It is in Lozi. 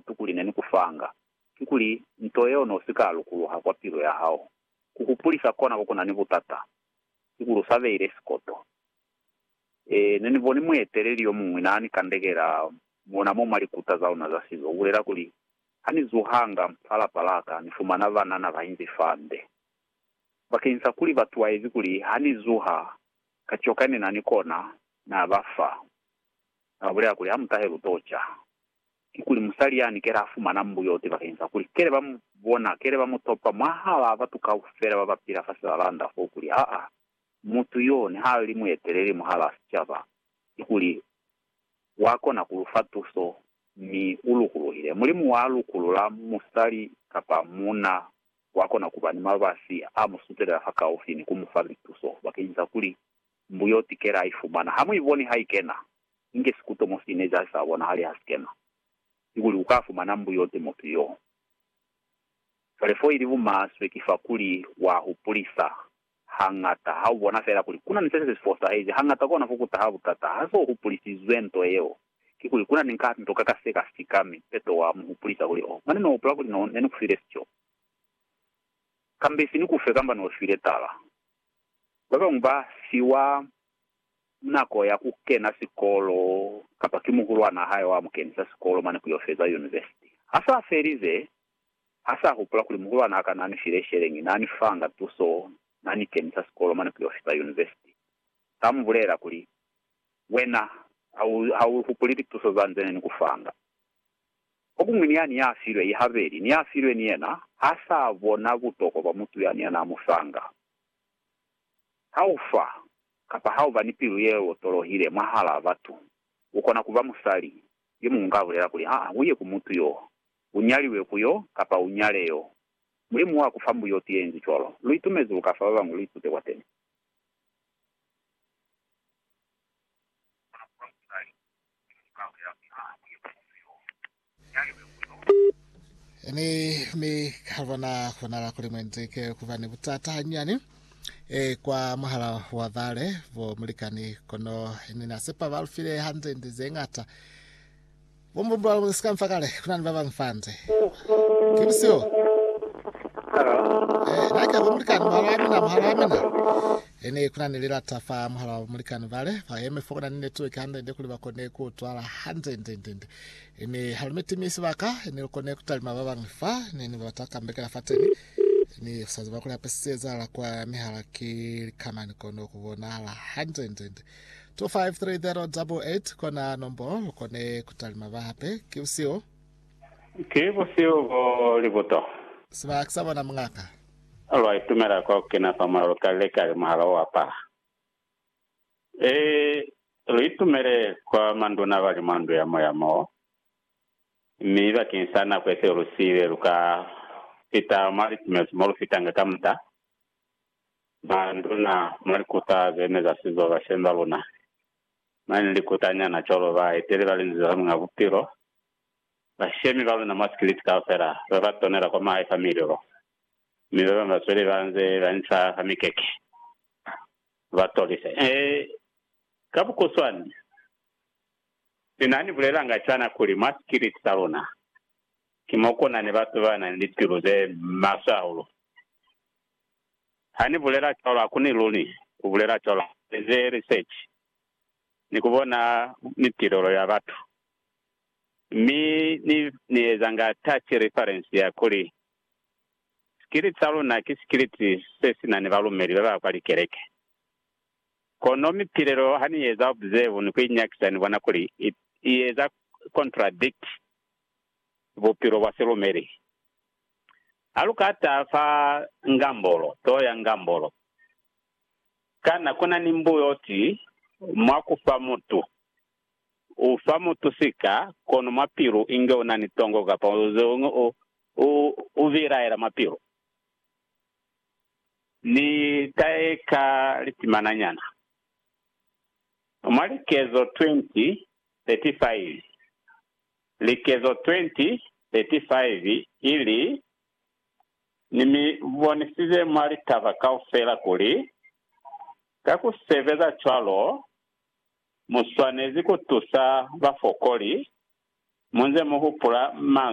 kikuli ne ni ku fanga, kikuli nto yeo ne u si ka lukuluha kwa pilu ya hao. Ku hupulisa kona ko ku na ni butata, kikuli u sa beile sikoto. Ee, ne ni boni mueteleli yo muñwi naa ni kandekela mona mo mwa likuta za luna za sizo. U bulela kuli, Ha ni zuhanga fa lapa la ka, ni fumana banana ba inzi fa nde. Bakeñisa kuli ba tuwaezi kuli ha ni zuha, ka coka ne na ni kona, naa ba fa. Na ba bulela kuli, Ha mu tahe lu to ca. kikuli musali yani kele a fumana mbuyoti bakeni sa kuli kele ba mu bona, kele ba mu topa mwahalaa batu kaufela ba ba pila fa silalanda fo kuli aa mutu yo niha li mueteleli mwahalaa sicaba, kikuli wa kona ku lu fa tuso mi u lukuluhile. Mulimu wa lukulula musali kapa muuna wa kona ku ba ni mabasi a mu sutelela fa kaufi ni ku mu fa lituso bakeni sa kuli mbuyoti kele a i fumana ha mu i boni ha i kena. Inge sikutomo sine c'a sa bonahali ha si kena, kikuli u ka fumana mbuyote mutu y'o. Cwale f'o ili bumaswe ki fakuli wa hupulisa hañata. Ha u bona fela kuli ku na ni se si fosahezi, hañata kona ku ku taha butata ha s'o hupulisizwe nto yeo. Kikuli ku na ni ka nto ka ka se ka sika, mi peto wa mu hupulisa kuli, Oh, mane no hupula kuli no ne ni ku file sico, kamba isi ni ku fe kamba no shwile tala. Ba bañwi ba fiwa nako ya ku kena sikolo kapa ki muhulwan'a hae wa mu kenisa sikolo mane ku yo feza yunivesiti. Ha s'a felize, ha s'a hupula kuli muhulwan'a ka n'a ni file sheleñi n'a ni fanga tuso n'a ni kenisa sikolo mane ku yo fita yunivesiti. S'a mu bulela kuli, Wena ha u hupuli lituso za nze ne ni ku fanga. Fokuñwi ni yani ya filwe i habeli ni ya filwe ni yena ha s'a bona butokwa bwa mutu yani ya n'a mu fanga. Ha u fa, kapa ha u ba ni pilu ye otolohile mwahal'a batu, u kona ku ba musali. Yo muñwi ka bulela kuli, Ha u ye ku mutu yo, u nyaliwe ku yo, kapa u nyale yo. Mulimu wa ku fa mbuyoti ye inzi cwalo. Lu itumezi lu ka fa ba bañwi lu itute kwateni. U kona ku ba musali. Yo muñwi ka bulela kuli, Ha u ye ku mutu yo, Mi, mi ka bona konala kuli muenzeke kuba ni butata hanyani e, kwa muhala wa bale bo mulikani, kono ni na sepa ba lufile hanzenze ze ngata. Bo mbumbu ba sika mfa kale, kuna ni ba bang fanze. Ki busiho. E, na ke bo mulikani, muhala wa mina, muhala wa mina. E, ni kuna ni lilata fa muhala wa mulikani bale, ba yeme fo kuna ni network hanzenze kuli ba kone ku twala hanzenze, nzenze. Ni halumeti mi sibaka ni lukone kutalima babañwi fa ne ni bata kambekela fateni. Ni kusaziba kuli hape se ezahala kwa mihala ki likamani kono kubonahala hande nde nde. 253088 kona nombolo lukone kutalima ba hape. Ki busihu. Ki busihu bo libuto. Siba ki sa bona mungaka. Lwa itumela kwa kukena fa mona lukali likali muhala o apala. Ee, lu itumele kwa manduna bali mwa ndu ya moya mo, mi bakeng sa nako ye seo lu siile lu ka fita mwa litumeliso mo lu fitanga kamuta. Manduna mwa likuta ze ne za sizo bashemi ba luna, mane ni likuta nyana cwalo, ba eteli ba Linzwi la Muñ'a Bupilo, bashemi ba luna mwa sikiliti kaufela, ba ba tonela kwa mahae fa milulo, mi ba bañwi ba zweli ba nze ba inca fa mikeke. Ha ba tolise ee, ka bukuswani, Ni na ni bulelanga cwana kuli mwa sikiliti sa luna ki mo ku na ni batu ba na ni lipilu ze maswe hahulu. Ha ni bulela cwalo, ha ku ni luli ku bulela cwalo. Ha ni eze resechi ni ku bona mitilelo ya batu, mi ni, ni ezanga touch reference ya kuli Sikiliti sa luna ki sikiliti se si na ni balumeli ba ba kwa likeleke. Kono mipilelo ha ni eza observe ni ku inyakisa ni bona kuli i, i eza contradict bupilo bwa silumeli. Ha lu ka taha fa ngambolo to ya ngambolo, kana ku na ni mbuyo o ti mwa ku fa mutu U fa mutu sika, kono mwa pilu inge u na ni tongo kapa zeñwi u, u, u bilaela mwa pilu. Ni ta eka litimana nyana. Mwa Likezo 20, 35, Likezo 20, 35, i li, Ni mi bonisize mwa litaba kaufela kuli, ka ku sebeza cwalo, Mu swanezi ku tusa bafokoli mu nze mu hupula manzwi a Mulimu.